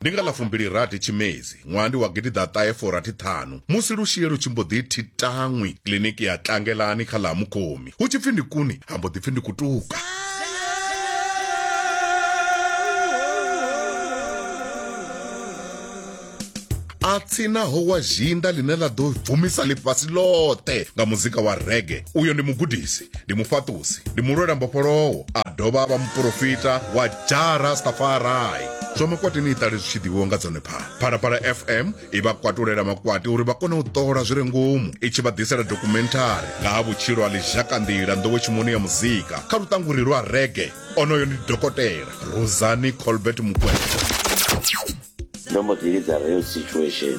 Ndi nga ḽa fumbilirathi Tshimedzi ṅwaha ndi wa gidiḓaṱahe furathi ṱhanu musi lushie lu tshi mbo ḓi thi taṅwi kiḽiniki ya Tlangelani kha ḽa ha Mukhomi hu tshi pfi ndi kuni ha mbo ḓi pfi ndi kutuka. a tsinaho wa zhinda ḽine ḽa ḓo bvumisa ḽifhasi ḽoṱhe nga muzika wa rege uyo ndi mugudisi ndi mufhaṱusi ndi mulwela mbofholowo a dovha a vha muporofita wa jara stafarai zwa makwati ni iṱale zwi tshi ḓivhiwa nga dzone phala phalaphala fm i vha kwatulela makwati uri vha kone u ṱola zwi re ngomu i tshi vha ḓisela dokumenthari nga ha vhutshilo ha lizhakanḓila nḓowetshimoni ya muzika kha luṱanguri lwa rege onoyo ndi dokotela rosani colbert mukwena ndo mbo ḓi lidza real situation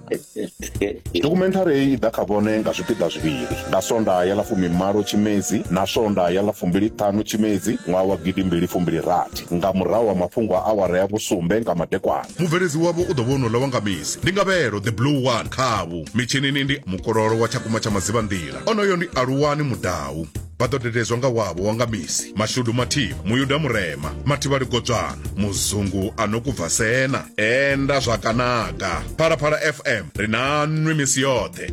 Dokhumenthari heyi i ḓa kha vhone nga zwipiḓa zwivhili, nga Sondaha ya ḽa fumimalo Tshimedzi na Sondaha ya ḽa fumbili-ṱhanu Tshimedzi ṅwaha wa gidi mbili fumbili rathi, nga murahu ha mafhungo a awara ya vhusumbe nga madekwana. Mubveledzi wavho u ḓo vha o no ḽa wanga misi, ndi Ngavhelo the Blue One khavho. Mitshinini ndi Mukololo wa Tshakumba tsha Madzivhanḓila, onoyo ndi Aluwani Mudau. vha ḓo dededzwa nga wavho wa nga misi mashudu mathivha muyuda murema mathivha ligodzwana muzungu a no kubva sena enda zwakanaka phalaphala fm ri na nwi misi yoṱhe